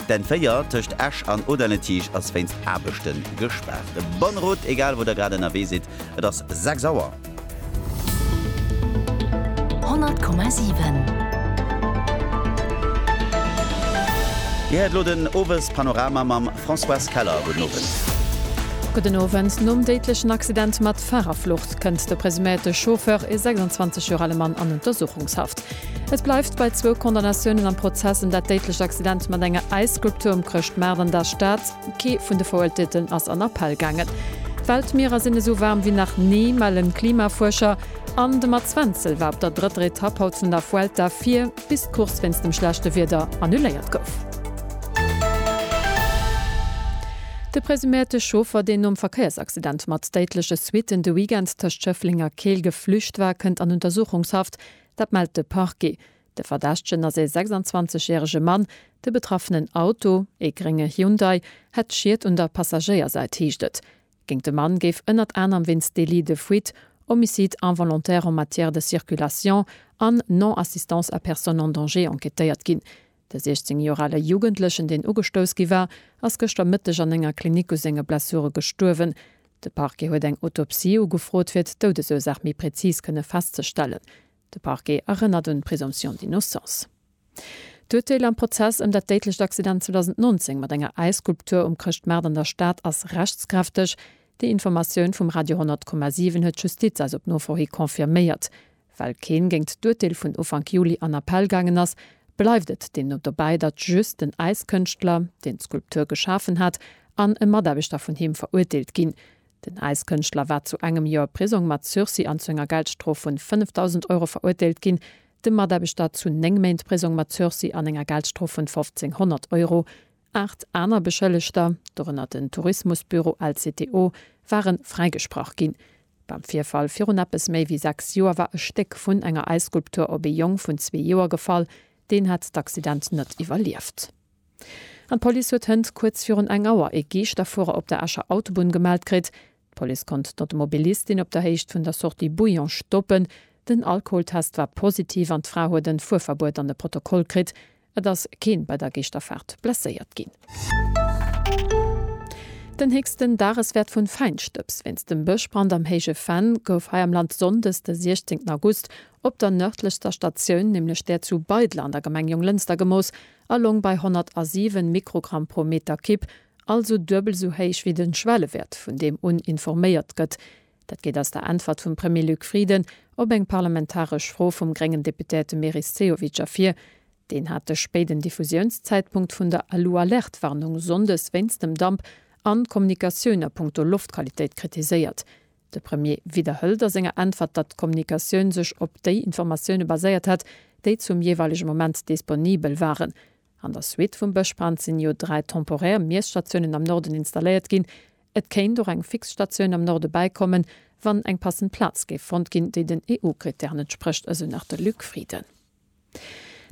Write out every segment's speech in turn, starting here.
D'N4 tëscht Esch an Auderne-Tiischt ass wéinst Aarbechte gespaart. Bonne route, egal wou der grad ënnerwee sidd, et ass 6 Auer. 100,7. Dir héiert elo den Owespanorama mam Françoise Keller. Gudden Owend. Gudden Owend. Nom déidlechen Accident mat Farerflucht kënnt de presuméierte Chauffeur, e 26 Joer ale Mann, an Untersuchungshaft. Et bleift bei zwou Condamnatiounen am Prozess ëm dat déidlecht Accident mat enger Äisskulptur um Chrëschtmaart an der Stad. Kee vun de Verurteelten ass an Appell gaangen. D'Weltmierer sinn esou waarm wéi nach ni, mellen d'Klimafuerscher. An de Mats Wenzel war op der drëtter Etapp haut vun der Vuelta vir, bis d'Course wéinst dem schlechte Wieder annuléiert gouf. De presuméierte Chauffer, deen nom Verkéiersaccident mat déidleche Suitten de Weekend tëscht Schëffleng a Keel geflücht war, kënnt an Untersuchungshaft. Dat mellt de Parquet. De Verdächtegen ass ee 26 järege Mann. De betraffenen Auto, ee grénge Hyundai, hätt Schied un der Passagéiersäit, heescht et. Géint de Mann géif ënnert anerem wéinst Délit de fuite, Homicide involontaire en matière de circulation an Non-assistance à personne en danger enquêtéiert ginn. De 16 Joer ale Jugendlechen, deen ugestouss gi war, ass gëschter Mëtteg an enger Klinik u senge Blessure gestuerwen. De Parquet huet eng Autopsie ugefrot, fir d'Doudesursaach méi prezis kënne festzestellen. De Parquet erënnert un d'Présomption d'innocence. D'Urteel am Prozess ëm dat déidlecht Accident 2019 mat enger Äisskulptur um Chrëschtmaart an der Stad ass rechtskräfteg. Déi Informatioun vum Radio 100,7 huet d'Justiz eis op Nofro hi confirméiert. Well keen géingt d'Urteel vun Ufank Juli an Appell gaangen ass, bleift et deemno dobäi, datt just den Äiskënschtler, deen d'Skulptur geschafen hat, an e Mataarbechter vun him verurteelt ginn. Den Äiskënschtler war zu engem Joer Prisong mat Sursis an zu enger Geldstrof vun 5.000 Euro verurteelt ginn, de Mataarbechter zu néng Méint Prisong mat Sursis an enger Geldstrof vun 1.500 Euro. Aacht aner Beschëllegter, dorënner den Tourismusbüro LCTO, ware fräigesprach ginn. Beim Virfall virun eppes méi wéi sechs Joer war e Stéck vun enger Äisskulptur op ee Jong vun zwee Joer gefall. Deen hat d'Accident net iwwerlieft. An d'Police huet hënt kuerz virun eng Auer ee Geeschterfuerer op der Escher Autobunn gemellt kritt. D'Police konnt d'Automobilistin op der Héicht vun der Sortie Bouillon stoppen. Den Alkoholtest war positiv an d'Fra huet en Fuerverbuet an e Protokoll kritt. Et ass keen bei der Geeschterfaart blesséiert ginn. Den héchsten Dageswäert vun Feinstëbs wéinst dem Bëschbrand am Héije Venn gouf hei am Land Sonndes de 16 August op der nërdlechster Statioun, nämlech där zu Beidler an der Gemeng Jonglënster gemooss a loung bei 107 Mikrogramm pro Meter Kipp, also duebel esou héich wéi den Schwellewäert vun deem un informéiert gëtt. Dat geet aus der Äntwert vum Premier Luc Frieden op eng parlamentaresch Fro vum gréngen Deputéierte Meris Sehovic ervir. Deen hat de spéiden Diffusiounszäitpunkt vun der Alu-Alert-Warnung sonndes wéinst dem Damp an d'Kommunikatioun a punkto Loftqualitéit kritiséiert. De Premier widderhëlt a senger Äntwert, datt d'Kommunikatioun sech op déi Informatioune baséiert hätt, déi zum jeeweilege Moment disponibel waren. An der Suite vum Bëschbrand sinn jo dräi temporär Miesstatiounen am Norden installéiert ginn, Et kéint och eng fix Statioun am Norde bäikommen, wann eng passend Plaz géif fonnt ginn, déi den EU-Krittären entsprécht, esou nach de Luc Frieden.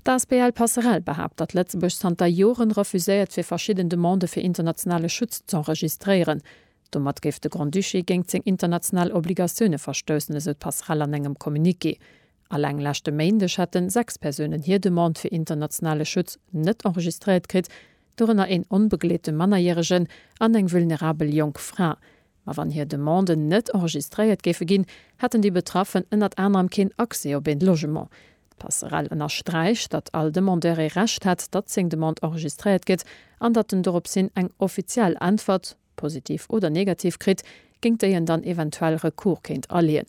D'asbl Passerell behaapt, datt Lëtzebuerg zanter Joren refuséiert, fir verschidden Demandë fir internationale Schutz z'enregistréieren. Domat géif de Grand-Duché géingt seng international Obligatioune verstoussen, esou d'Passerell an engem Communiqué. Alleng leschte Méindeg hätten sechs Persounen hir Demande fir internationale Schutz net enregistréiert kritt, dorënner een onbegleete Mannerjäregen an eng vulnerabel jonk Fra. Ma wann hir Demanden net enregistréiert géife ginn, hätten déi Betraffen ënnert anerem keen Accès op een Logement. D'Passerell ënnersträicht, datt all Demandeur ee Recht hätt, datt seng Demande enregistréiert gëtt an datt en dorops hin eng offiziell Äntwert, positiv oder negativ, kritt, géint déi en dann eventuell Recours kéint aleeën.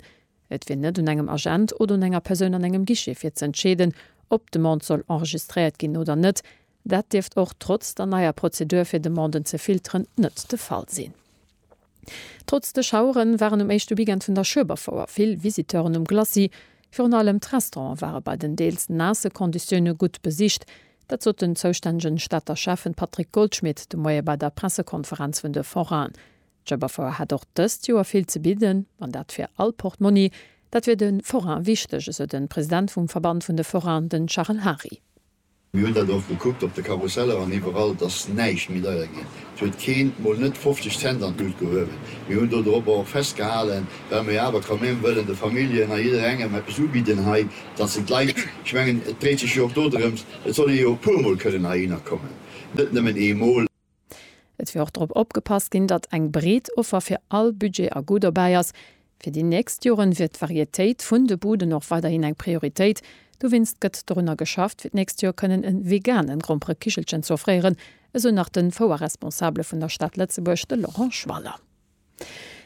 Et wier net un engem Agent oder un enger Persoun an engem Guichet fir z'entscheeden, ob d'Demande soll enregistréiert ginn oder net, Dat dierft och trotz der neier Prozedur fir Demanden ze filteren net de Fall sinn. Trotz de Schauere waren um éischte Weekend vun der Schueberfouer vill Visiteuren um Glacis. Virun allem d'Restaurante ware bei den deels naasse Konditioune gutt besicht. Dat sot den zoustännegen Stater Schäffen Patrick Goldschmidt de Moie bei der Pressekonferenz vun de Forainen. D'Schueberfouer hätt och dëst Joer vill ze bidden, an dat fir all Portmonni. Dat wier de Forain wichteg, esou de President vum Verband vun de Forainen, den Charel Hary. Mir hunn dat och gekuckt op de Karusseller an iwwerall, et ass näischt méi deier ginn. Et huet keen, mol net 50 Cent an d'Lut gehuewen. Mir hunn do dorobber och festgehalen, well mer jo awer quand même wëllen de Familljen a jidderengem eppes ubidden hei, datt se d'Leit, ech mengen et dréit sech jo och dodrëms, et soll ee jo e puermol kënnen heihinner kommen, net nëmmen eemol. Et wier och drop opgepasst ginn, datt eng breet Offer fir all Budget a Goût dobäi ass. Fir déi nächst Joren wier d'Varietéit vun de Buden och weiderhin eng Prioritéit. Dowéinst gëtt dorunner geschafft, fir d'nächst Joer kënnen e vegane Gromperekichelchen ze offréieren, esou nach de Fouerresponsabele vun der Stad Lëtzebuerg, de Laurent Schwaller.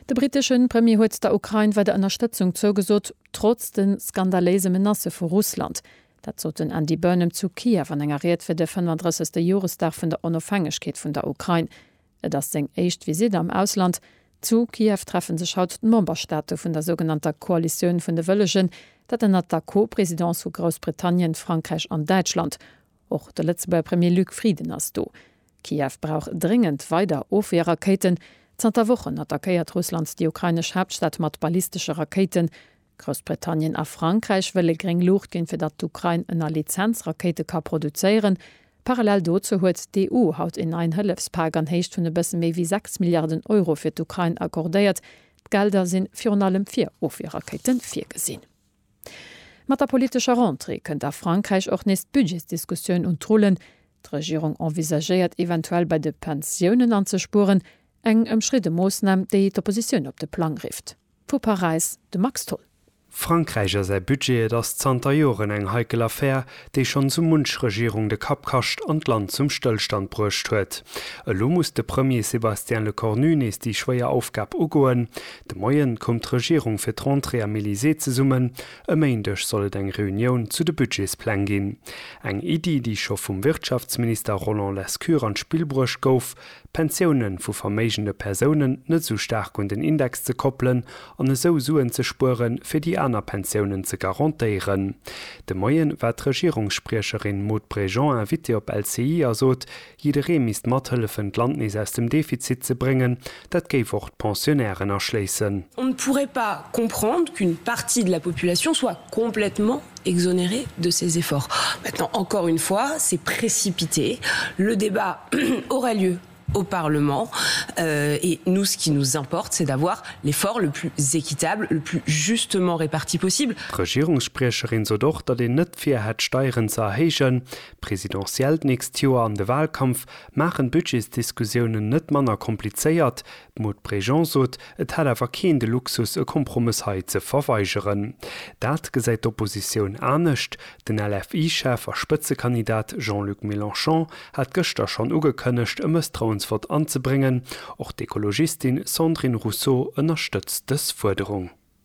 De britesche Premier huet der Ukrain weider Ënnerstëtzung zougesot, trotz de skandaléise Menacë vu Russland. Dat sot den Andy Burnham zu Kiew an enger Ried fir de 35. Joresdag vun der Onofhängegkeet vun der Ukrain. Et ass seng éischt Visitt am Ausland. Zu Kiew treffe sech haut d'Memberstaate vun der sougenannter Koalitioun vun de Wëllegen, dat ënnert der Co-Presidence vu Groussbritannien, Frankräich an Däitschland. Och de Lëtzebuerger Premier Luc Frieden ass do. Kiew brauch dréngend weider Ofwierrakéiten. Zanter Wochen attackéiert Russland déi ukrainesch Haaptstad mat ballistesche Rakéiten. Groussbritannien a Frankräich wëlle gréng Luucht ginn, fir datt d'Ukrain ënner Lizenz Rakéite ka produzéieren. Parallel dozou huet d'EU haut een neien Hëllefspak an Héicht vun e bësse méi wéi 6 Milliarden Euro fir d'Ukrain accordéiert. D'Gelder si virun allem fir Ofwierrakéite virgesinn. Mat der politescher Rentrée kënnt a Frankräich och nees d'Budgetsdiskussioun un d'Rullen. D'Regierung envisagéiert eventuell bei de Pensiounen anzespueren, eng ëmstridde Moossnam, déi d'Oppositioun op de Plang rifft. Vu Paräis de Max Tholl. Frankräich a säi Budget, Et ass zanter Joren eng heikel Affär, déi schonn sou munch Regierung de Kapp kascht an d'Land zum Stëllstand bruecht huet. Elo muss de Premier Sébastien Lecornu nees déi schwéier Aufgab ugoen. De Moien koum d'Regierung fir d'Rentrée am Elysée zesummen. E Méindeg soll et eng Reunioun zu de Budgetspläng ginn. Eng Iddi, déi scho vum Wirtschaftsminister Roland Lescure an d'Spill bruecht gouf, d'Pensioune vu verméigende Persounen net esou staark un den Index ze koppelen an esou Suen ze spuere fir déi aner Pensiounen ze garantéieren. De Moien war d'Regierungsspriecherin Maud Bregeon Invitée op LCI a sot, jidderee misst mathëllefen d'Land nees aus dem Defizit ze bréngen, dat géif och d'Pensionnairen aschléissen. On ne pourrait pas comprendre qu'une partie de la population soit complètement exonéré de ses efforts. Maintenant, encore une fois, c'est précipité. Le débat aurait lieu au Parlement et nous, ce qui nous importe, c'est d'avoir l'effort le plus équitable, le plus justement réparti possible. D'Regierungsspriecherin sot och, datt een net vir hätt, Steieren ze erhéijen. D'Presidentielle d'nächst Joer an de Wahlkampf maachen d'Budgetsdiskussiounen net manner komplizéiert. D'Maud Bregeon sot, et hätt awer keen de Luxus e Kompromëss hei ze verweigeren. Dat gesäit d'Oppositioun anescht. Den LFI-Chef a Spëtzekandidat Jean-Luc Mélenchon hat gëschter schonn ugekënnegt e Mësstrauensvott anzebréngen. Och d'Ekologistin Sandrine Rousseau ënnerstëtzt dës Fuerderung.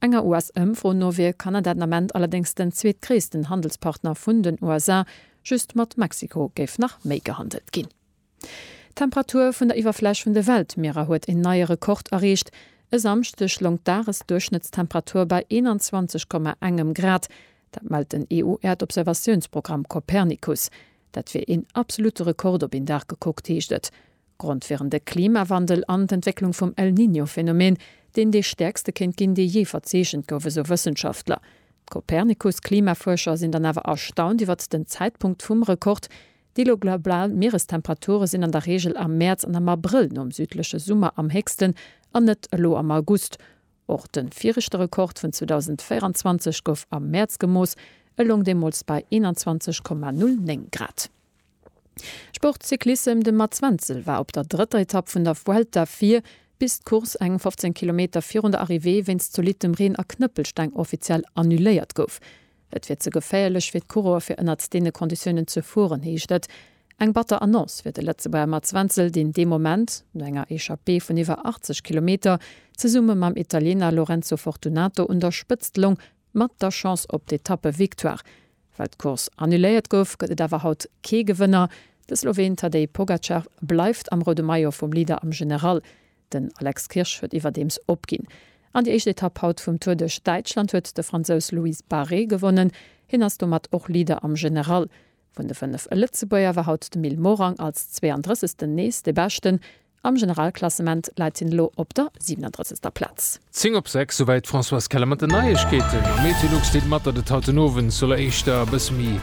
Enger US-Ëmfro no wier Kanada den Ament allerdéngs den zweetgréissten Handelspartner vun den USA, just mat Mexiko géif nach méi gehandelt ginn. D'Temperatur vun der Iwwerfläch vun de Weltmierer huet een neie Rekord erreecht. E Samschdeg loung d'Dagesduerchschnëttstemperatur bei 21 Komma engem Grad. Dat mellt den EU-Äerdobservatiounsprogramm Copernicus. Dat wier een absolutte Rekord op een Dag gekuckt, heescht et. Grond wieren de Klimawandel an d'Entwécklung vum El Niño-Phänomen, deen dee stäerkste kéint ginn, dee jee verzeechent gouf, esou Wëssenschaftler. D'Copernicus-Klimafuerscher sinn dann awer erstaunt iwwert den Zäitpunkt vum Rekord, Déi elo global Mierestemperature sinn an der Reegel am Mäerz an am Abrëll nom südleche Summer am héchsten, an net elo am August. Och de viregte Rekord vun 2024 gouf am Mäerz gemooss, e loung deemools bei 21,09 Grad. Sport Cyclissem De Mats Wenzel war op der drëtter Etapp vun der Vuelta vir, bis d'Course eng 15 Kilometer virun der Arrivée wéinst zolittem Reen a Knëppelsteng offiziell annuléiert gouf. Et wier ze geféierlech fir d'Coureuer fir ënnert deene Konditiounen ze fueren, heescht et. Eng batter Annonce fir de Lëtzebuerger Mats Wenzel, deen dee Moment, no enger Echappée vun iwwer 80 Kilometer, zesumme mam Italiener Lorenzo Fortunato un der Spëtzt loung, Mat der Chance op d'Etappe-Victoire. Well d'Course annuléiert gouf, gëtt et awer haut kee Gewënner. De Sloween Tadej Pogacar bleift am roude Maillot vum Leader am General. Den Alex Kirsch huet iwwerdeems opginn. An déi éischt Etapp haut vum Tour duerch Däitschland huet de Fransous Loïs Barret gewonnen. Hien ass domat och Leader am General. Vun de fënnef Lëtzebuerger war haut de Mil Morang als 32. nees de Beschten. Am Generalklassement läit hien elo op der 37. Plaz. Zéng op sechs, souwäit d'Françoise Keller mat den Neiegkeeten. Meteolux deelt mat, datt et haut den Owend soll éischter e bësse méi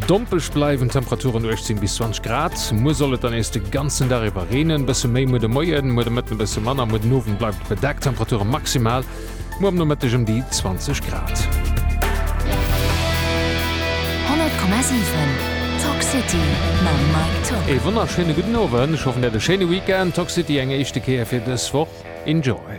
dompelg bleiwen, Temperaturen 18 bis 20 Grad. Muer soll et dann nees de ganzen Dag iwwer reenen, e bësse méi muer de Moien, muer de Mëtten e bësse manner. Muer den Owend bleift et bedeckt, Temperature maximal Muer am Nomëtteg ëm déi 20 Grad. 100,7 Talk City mam Mike Top. Ee wonnerschéine gudden Owend, ech hoffen der hat e schéine Weekend. Talk City eng éischte Kéier fir dës Woch. Enjoy!